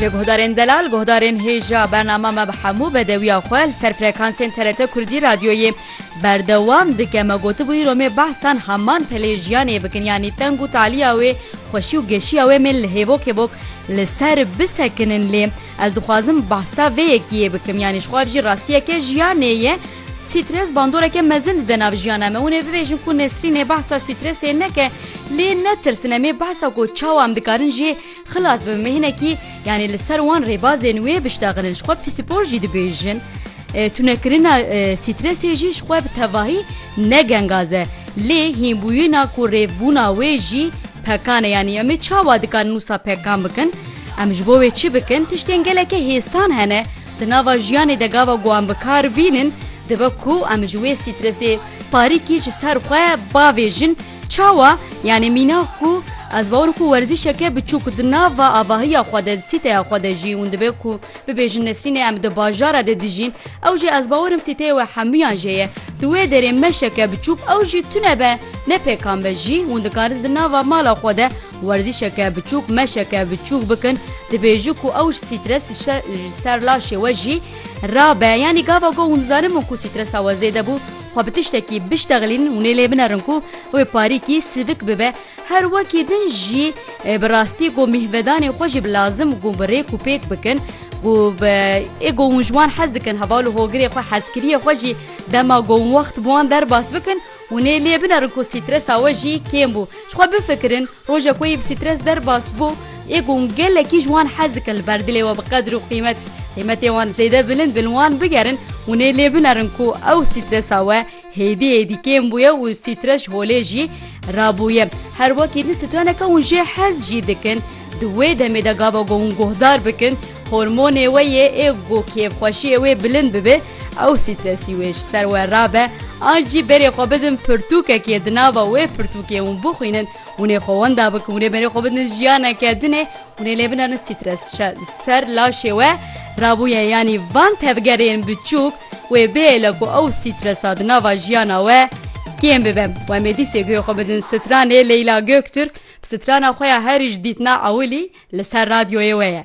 Li guhdarên delal, guhdarên hêja bernama me bi hemû bedewiya xwe li ser frekansên TRT Kurdî radyoyê berdewam dike. Me gotibû îro mê behsan heman pelê jiyanê bikin yanî teng û taliya wê, xweşî û geşiya wê mê li hêvok hêvok li ser bisekinin lê ez dixwazim behsa vê yekiyê bikim yanî ji xwe re jî rastiyeke jiyanê ye. Strês bandoreke mezin dide nav jiyana me. Hûn ê bibêjin ku Nesrînê behsa strêsê neke lê netirsin em ê behsa ku çawa em dikarin jê xilas bibin me hinekî yanî li ser wan rêbazên wê biştexilin ji xwe pîsîpor jî dibêjin. Tunekirina strêsê jî ji xwe bi tevahî ne gengaz e lê hînbûyîna ku rêvbûna wê jî pekan e yanî em ê çawa dikarin wisa pekan bikin? Em ji bo wê çi bikin? Tiştên geleke hêsan hene Di nava jiyanê de gava ku em bi kar bînin dibe ku em ji wê strêsê parîkî ji ser xwe bavêjin. Çawa? Yanî mîna ku ez bawer ku werzîşeke biçûk di nava avahiya xwe de, di sîteya xwe de jî hûn dibe ku bibêjin Nesrînê em di bajara de dijîn ew jî ez bawer im sîteyê we hemûyan jê ye. Di wê derê meşeke biçûk ew jî tune be ne pêkan be jî hûn dikarin di nava mala xwe de Werzîşeke biçûk meşeke biçûk bikin dibêjin ku ew ji strês ji ser laşê we jî rabe yanî gava ku hûn dizanin min ku strêsa we zêde bû xwe bi tiştekî biştexlînin hûnê lê binerin ku wê parîkî sivik bibe her wekî din jî bi rastî ku mîhvedanê xwe jî bi lazim ku bi rêk û pêk bikin ku bi ê ku hûn ji wan hez dikin heval û hogirê xwe hezkiriyê xwe jî dema ku wext bi wan derbas bikin Hûn ê lê binerin ku stresa we jî kêm bû. Ji xwe bifikirin, rojek wê yê bi stres derbas bû, ê ku hûn gelekî ji wan hez dikin li ber dilê we bi qedir û qîmet, qîmetê wan zêde bilind be li wan bigerin, hûn ê lê binerin ku ew stresa we hêdî hêdî kêm bûye û stres ji holê jî rabûye. Her wekî din straneke hûn jê hez jî dikin. Di wê demê de gava ku hûn guhdar bikin, Hormonê wê yê ê ku kêfxweşiyê wê bilind bibe ew stressî wê ji ser we rabe an jî berê xwe bidin pirtûkekê di nava wê pirtûkê hûn bixwînin hûn ê xwe wenda bikin hûn ê berê xwe bidin jiyaneke din ê hûn ê lê binerin stress ji ser laşê we rabûye yanî van tevgerên biçûk wê bihêle ku ew stressa di nava jiyana we kêm bibe wemê dîsê guhê xwe bidin stranê Leyla Göktürk Strana xwe ya herî ji dîtina ewilî li ser radyoyê we ye.